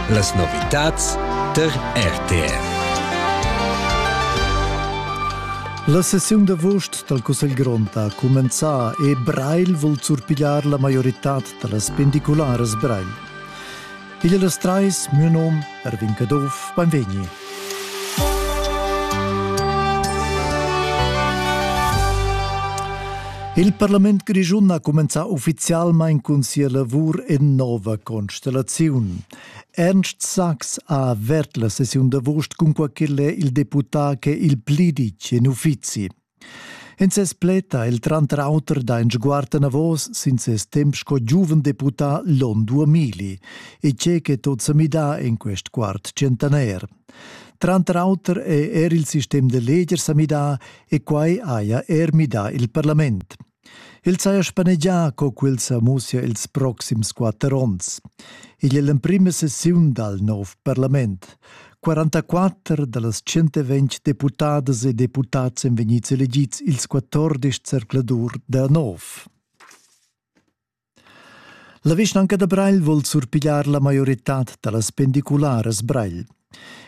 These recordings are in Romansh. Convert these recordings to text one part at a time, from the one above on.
Las novitads tar RTR. La sessiun d'avust dal Cussegl grond ha cumenzà e Breil vul surpigliar la maioritad da las pendicularas Breil. Il las trais, mio nom, Erwin Caduff, beinvegni. Il parlament grischun ha cumenzà uffizialmain cun sia lavur en nova constellaziun. Ernst Sachs ha avert la sessiun d'avust cun quai ch'el è il deputà ch'è il pli ditg en uffizi. In ses pled ha el tranter auter dà in sguard anavos sin ses temp sco giuven deputà Lon Duamili, e tge che tot sa midà en quest quart tschentaner. Tranter auter è er il sistem da leger sa midà e quai haja er midà il parlament. El saja spanegià co quel sa mussia ils proxims quatter onns. Igl è l'emprima sessiun dal nov parlament. 44 da las 120 deputadas e deputads èn vegnids elegids ils 14 zercladur da nov. La vischnanca da Breil vul surpigliar la maioritad da las pendicularas Breil.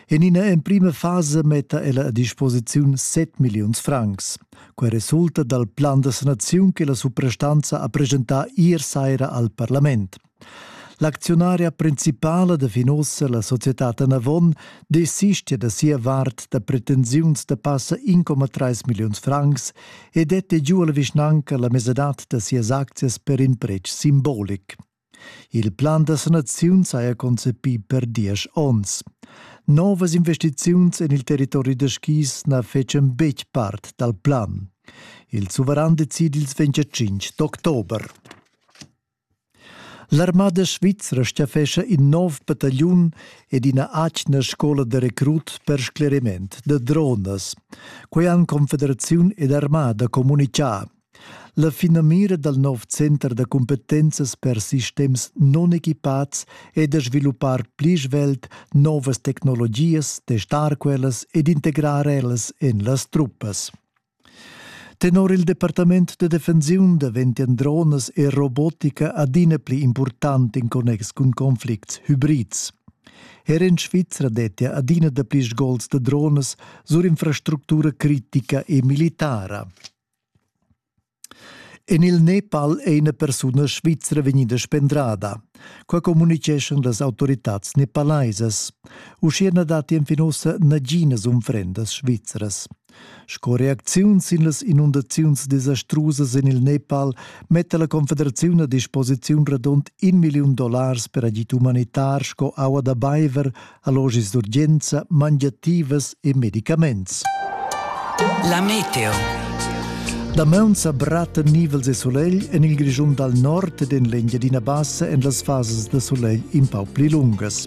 En ina emprima fasa metta ella a disposiziun 7 milliuns francs. Quai resulta dal plan da sanaziun che la suprastanza ha presentà ier saira al parlament. L'acziunaria principala da Finossa, la società Anavon, desistia da sia vart da pretensiuns da passa 1,3 milliuns francs e dette giu alla vischnanca la mesadad da sias aczias per in pretsch simbolic. Il plan da sanaziun saja concepì per diesch onns. Novas investiziuns en il territori da skis na fecen betg part dal plan. Il suveran decid ils 25 d'october. L'armada svizra staffescha in nov batagliun ed ina atgna scola da recrut per scleriment da dronas. Quei han Confederaziun ed armada communicà. La finamira dal nov center da cumpetenzas per sistems non equipats è da sviluppar pli svelt novas tecnologias, testar quellas ed integrar ellas en las truppas. Tenor il departament da defensiun daventian dronas e robotica adina pli impurtant in connex cun conflicts hybrids. Er en Svizra dettia adina dapli sgols da dronas sur infrastructura critica e militara. En il Nepal è ina persuna svizra vegnida spendrada. Qua communiceschan las autoritads nepalaisas. Uschia na datti enfin ussa naginas unfrendas svizras. Sco reacziun sin las inundaziuns desastrusas en il Nepal metta la Confederaziun a disposiziun radund in milliun dollars per agid umanitar sco aua da baiver, allogis d'urgenza, mangiativas e medicaments. La meteo. Damaun sa bratta nivels e solegl en il Grischun dal nord ed en l'Engiadina Bassa en las fasas da solegl in pau pli lungas.